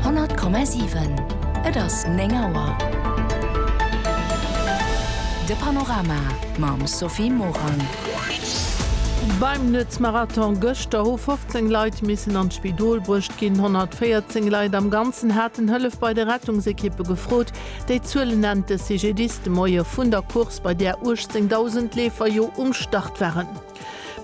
100,7 Et ass 9 Auer. De Panorama mam Sophie Morang. Beim Nuetsmarathon gëschter hu 15 Leit missen an d'Spidol bruecht ginn. 114 Leit am Ganzen haten Hëllef bei de Rettungsekippe gefrot. Déi Zuele nennt de CGDIS de Moie vun der Course, bei där 18.000 Leefer jo um Start waren.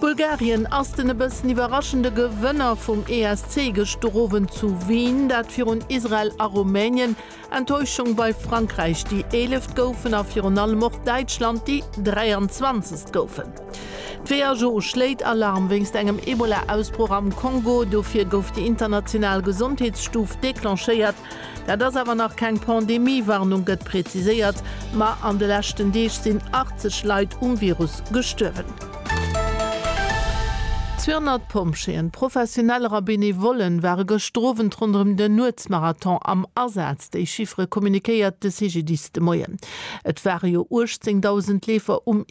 Bulgarien ass den e bëssen iwwerraschende Gewënner vum ESC gëschter Owend zu Wien, dat virun Israel a Rumänien. Enttäuschung bei Frankräich, déi eeleft goufen, a virun allem och Däitschland, déi 23. goufen. D'WHO schléit Alarm wéinst engem Ebola-Ausbroch am Kongo. Dofir gouf déi international Gesondheetsstuf declenchéiert. Dat ass awer nach keng Pandemie-Warnung, gëtt preziséiert. Ma an de leschten Deeg sinn 80 Leit um Virus gestuerwen. 200 Pompjeeën, Professioneller a Benevollen ware gëschter Owend ronderëm den Nuetsmarathon am Asaz. Déi Chiffere communiquéiert de CGDIS de Moien. Et ware jo 18.000 Leefer um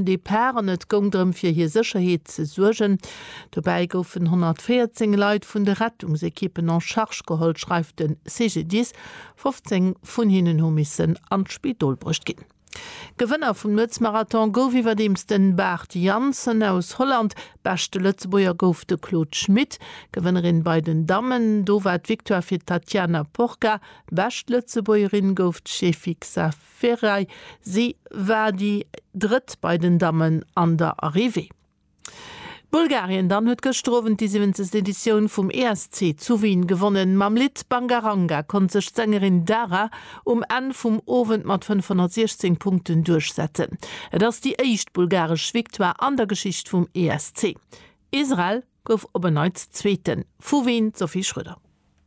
Depart an et goung drëm, fir hir Sécherheet ze suergen. Dobäi goufen 114 Leit vun de Rettungsekippen en charge geholl, schreift de CGDIS. 15 vun hinnen hu missen an d'Spidol bruecht ginn. Gewënner vum Nuetsmarathon gouf iwwerdeems de Bart Jansen aus Holland. Beschte Lëtzebuerger gouf de Claude Schmit. Gewënnerin bei den Dammen, do war d'Victoire fir d'Tatiana Porca. Bescht Lëtzebuergerin gouf d'Shefixa Ferai. Si war déi Drëtt bei den Dammen an der Arrivée. Bulgarien dann huet gëschter Owend déi 70. Editioun vum ESC zu Wien gewonnen. Mam Lidd Bangaranga konnt sech d'Sängerin Dara um Enn vum Owend mat 516 Punkten duerchsetzen. Et ass déi éischt bulgaresch Victoire an der Geschicht vum ESC. Israel gouf op en Neits Zweeten. Vu Wien d'Sophie Schröder.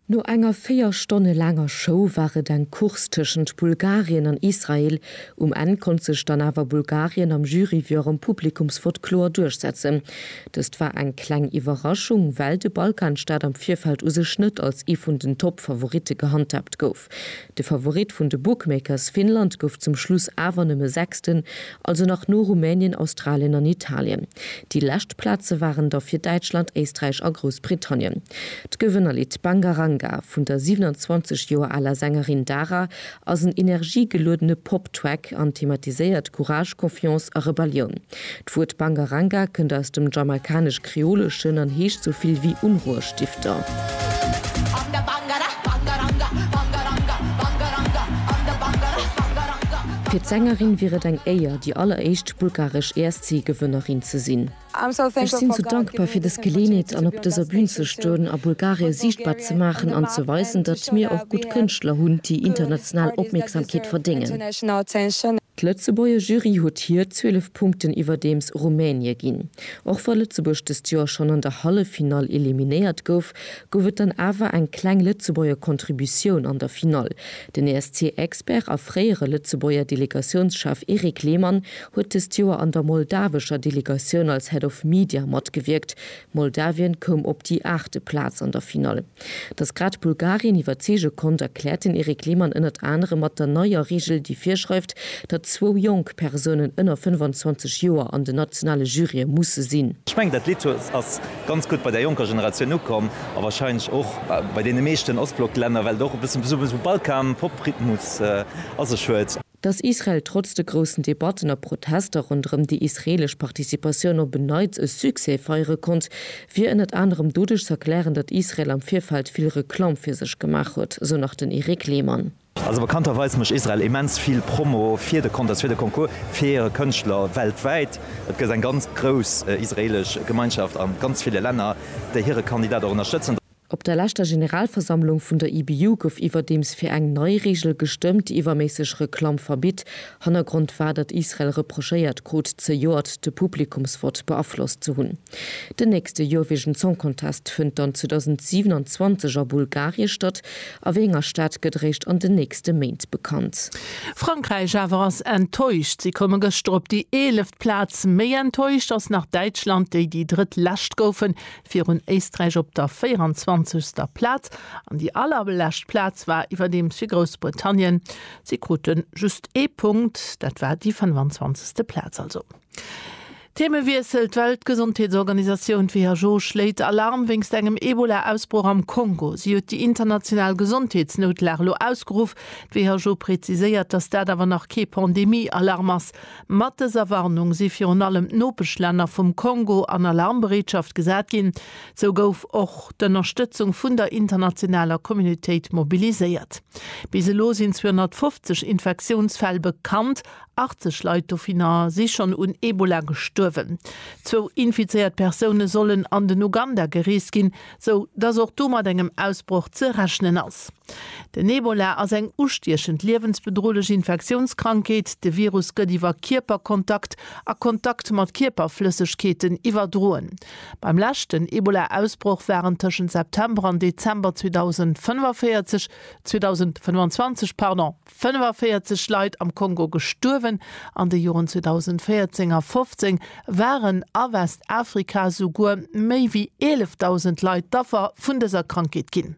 No enger véier Stonne laanger Show war et eng Course tëschent Bulgarien an Israel. Um Enn konnt sech dann awer Bulgarien am Jury wéi och am Publikumsvott kloer duerchsetzen. Dëst war eng kleng Iwwerraschung, well de Balkanstaat am Virfeld u sech net als ee vun den Top-Favoritte gehandhaabt gouf. De Favorit vun de Bookmakers Finnland gouf zum Schluss awer nëmme Sechsten, also nach no Rumänien, Australien an Italien. Déi lescht Plaze waren da fir Däitschland, Éisträich a Groussbritannien. D'Gewënnerlidd Banga Ranga vun der 27 Joer aler Sängerin Dara ass en energiegeluedene Pop-Track an thematiséiert Courage, Confiance a Rebellioun. D'Wuert Bangaranga kënnt aus dem Jamaikanesch-Kreoleschen an heescht sou vill wéi Unruhestifter. Fir d'Sängerin wier et eng Éier, déi alleréischt bulgaresch ESC-Gewënnerin ze sinn. Ech sinn sou dankbar fir dës Geleenheet an op dëser Bün ze stoen a Bulgarie siichtbar ze maachen an ze weisen, datt mir och gutt Kënschtler hunn, déi international Opmierksamkeet verdéngen. D'Lëtzebuerger Jury huet hir 12 Punkten iwwerdeems Rumänie ginn. Och wa Lëtzebuerg dëst Joer schonn an der Halleffinall eliminéiert gouf, gouf et dann awer eng kleng Lëtzebuerger Contributioun an der Finall. Den ESC-Expert a fréiere Lëtzebuerger Delegatiounschef Erik Lehmann huet dëst Joer an der moldawescher Delegatioun als Head of Media matgewierkt. Moldawien koum op déi aachte Plaz an der Finall. Datt grad Bulgarien iwwerzeege konnt, erkläert den Eric Lehmann ënnert anerem mat der neier Reegel, déi virschreift, datt zwou jonk Persounen ënner 25 Joer an den nationale Jurye musse sinn. Ech mengen, dat Lidd ass ganz gutt bei der jonker Generatioun ukomm a warscheinlech och bei deene meeschten Ostblock-Länner, well et och e bëssen esou e Balkan-Pop-Rhythmus a sech huet. Datt Israel trotz de groussen Debatten a Protester ronderëm déi israeelesch Participatioun op en Neits e Succès feiere konnt, wier ënnert anerem doduerch z'erklären, datt Israel am Virfeld vill Reklamm fir sech gemaach huet, sou nach den Eric Lehmann. Also bekannterweis mécht Israel immens vill Promo fir de Contest, fir de Concours, fir hire Kënschtler weltwäit. Et gëtt eng ganz grouss israeelesch Gemeinschaft a ganz ville Länner, déi hire Kandidat och ënnerstëtzen. Op der leschter Generalversammlung vun der IBU gouf iwwerdeems fir eng nei Reegel gestëmmt, déi iwwerméisseg Reklamm verbitt. Hannergrond war, datt Israel reprochéiert krut, zejoert de Publikumsvott beaflosst ze hunn. Den nächste Eurovision Song Contest fënnt dann 2027 a Bulgarie statt. A wéi enger Stad, gëtt eréischt an den nächste Méint bekannt. Frankräich awer ass enttäuscht. Si koume gëschter op déi eeleft Plaz. Méi enttäuscht ass nach Däitschland, déi déi drëtt-lescht goufen. Virun Éisträich op der 24. Plaz an déi allerlescht Plaz war iwwerdeems fir Groussbritannien. Si krute just ee Punkt, dat war déi 25. Plaz also. Theemewiessel, D'Weltgesondheetsorganisatioun d'WHO schléit Alarm wéinst engem Ebola-Ausbroch am Kongo. Si huet déi international Gesondheetsnoutlag elo ausgeruff. D'WHO preziséiert, datt dat awer nach kee Pandemie-Alarm ass. Mat dëser Warnung si virun allem d'Nopeschlänner vum Kongo an Alarmbereetschaft gesat ginn. Sou gouf och d'Ënnerstëtzung vun der internationaler Communautéit mobiliséiert. Bis elo sinn 250 Infektiounsfäll bekannt, 80 Leit dovinner si schonn un Ebola gestuerwen. Zwou infizéiert Persoune sollen an den Uganda gereest ginn, sou dass och do mat engem Ausbroch ze rechnen ass. Den Ebola ass eng ustiechend, liewensbedrohlech Infektiounskrankheet. De Virus gëtt iwwer Kierperkontakt a Kontakt mat Kierperflëssegkeeten iwwerdroen. Beim leschten Ebola-Ausbroch waren tëschent September an Dezember 2045, 2025, pardon, 45 Leit am Kongo gestuerwen, an de Joren 2014 a 15 waren a Westafrika souguer méi ewéi 11.000 Leit d'Affer vun dëser Krankheet ginn.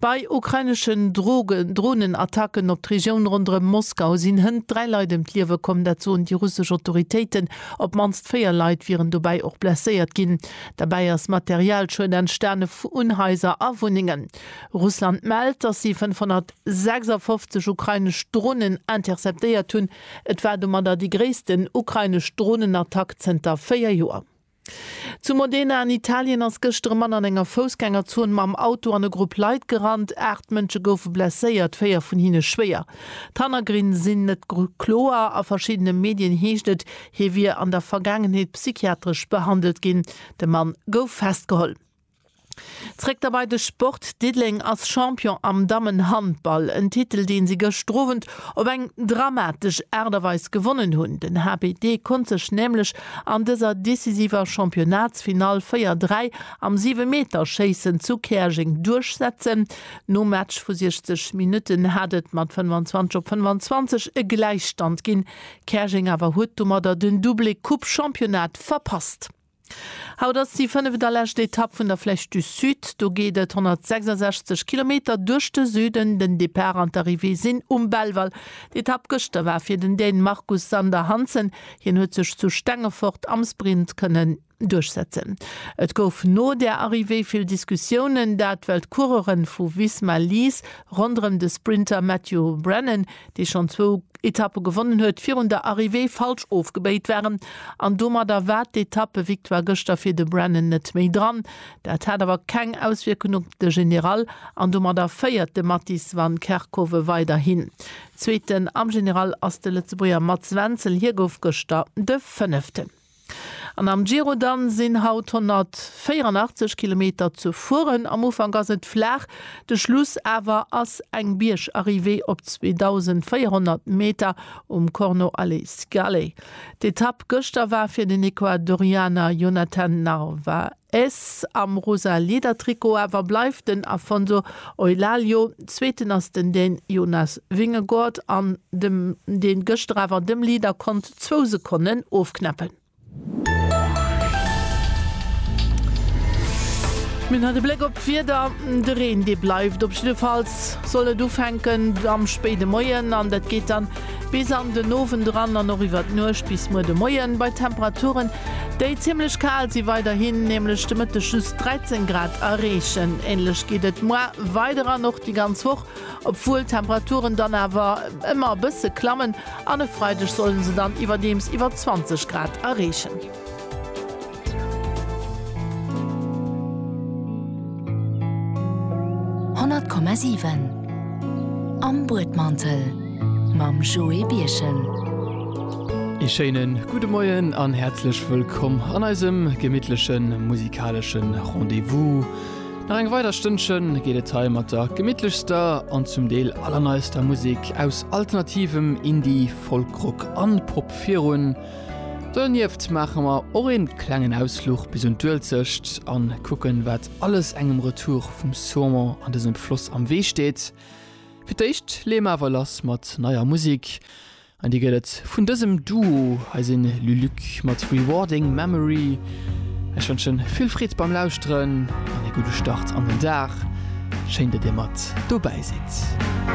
Bei ukraineschen Dronenattacken op d'Regioun ronderëm Moskau sinn hënt 3 Leit ëm d'Liewe komm, dat soen déi russesch Autoritéiten. Op d'mannst 4 Leit wieren dobäi och blesséiert ginn. Derbäi ass Materialschued entstanen un Haiser a Wunnengen. Russland mellt, datt si 500. 56 ukrainesch Dronen interceptéiert hunn. Et war domadder déi gréissten ukrainesch Dronenattack zënter 4 Joer. Zu Modena an Italien ass gëschter e Mann an enger Foussgängerzon mam Auto an e Grupp Leit gerannt. Aacht Mënsche goufe blesséiert, véier vun hinne schwéier. D'Hannergrinne sinn net kloer. A verschiddene Medien heescht et, hie wier an der Vergaangenheet psychiatresch behandelt ginn. De Mann gouf festgeholl. Zréck da bei de Sport, Diddeleng ass Champion am Dammenhandball, en Titel deen si gëschter Owend op eng dramatesch Aart a Weis gewonnen hunn. Den HBD konnt sech nämlech an dëser decisiver Championnatsfinall 4, 3 am Siwemeterschéissen zu Käerjeng duerchsetzen. Nom Match vu 60 Minutten hat et mat 25 op 25 e Gläichstand ginn, Käerjeng awer huet domadder den Doublé Coupe-Championnat verpasst. Haut ass déi fënneft a lescht Etapp vun der Flèche du Sud. Do geet et 166 Kilometer duerch de Süden. Den Depart an d'Arrivée sinn um Belval. D'Etapp gëschter war fir den Dän Marcus Sander Hansen. Hien huet sech zu Stengefort am Sprint kënnen duerchsetzen. Et gouf no der Arrivée vill Diskussiounen, dat well d'Coureuren vu Visma Lease ronderëm de Sprinter Matthew Brennan dee schonn zwou Etappe gewonnen huet, virun der Arrivée falsch ofgebéit waren an domadder war d'Etappe-Victoire gëschter fir de Brennan net méi dran. Dat hat awer keng Auswierkung op de General an domadder féiert de Mattis van Kerckhove weiderhin. Zweeten am General ass de Lëtzebuerger Mats Wenzel, hie gouf gëschter de Fënneften. An am Giro dann sinn haut 184 Kilometer ze fueren. Am Ufank ass et flaach, de Schluss awer ass eng Biergarrivée op 2.400 Meter um Corno alle Scale. D'Etapp gëschter war fir den Ecuadorianer Jonathan Narvaez. S, Am rosa Liedertrikot awer bleift den Afonso Eulaglio, zweeten ass den den Jonas Vingegaard an dem deen gëschter awer dem Leader konnt zwou Sekonnen ofknäppen. Mir hunn haut e Bléck op d'Wieder, de Reen dee bleift op jiddefalls, soll net ufänken am spéide Moien an dat geet dann bis an den Owend eran an och iwwert Nuecht bis muer de Moien bei Temperaturen, déi zimmlech kal si, weiderhin nämlech de Mëtteg just 13 Grad erreechen. Änlech geet et moar weider an och déi ganz Woch, obwuel d'Temperaturen dann awer ëmmer e bësse klammen an e Freideg sollen se dann iwwerdeems iwwer 20 Grad erreechen. Honnert Komma siwen Am Buedmantel mam Joé Birchen. Ee schéine gudde Moien an häerzlech wëllkomm an eisem gemittleche musikalesche Rendez-vous. Nach eng weider Stënnche geet et hei mat der gemittlechster an zum Deel allerneister Musek aus alternativem Indie, Folkrock an Pop virun. Donieft maache mer och een klengen Ausfluch bis un d'Uelzecht an kucken wat alles engem Retour vum Saumon an dësem Floss am Wee steet. Fir d'éischt leeë mer awer lass mat neier Musik an déi gëtt et vun dësem Duo, hei sinn Luluc mat Rewarding Memory. Ech wënschen vill Freed beim Lauschteren an ee gudde Start an den Dag. Schéin dat dir mat dobäi sidd.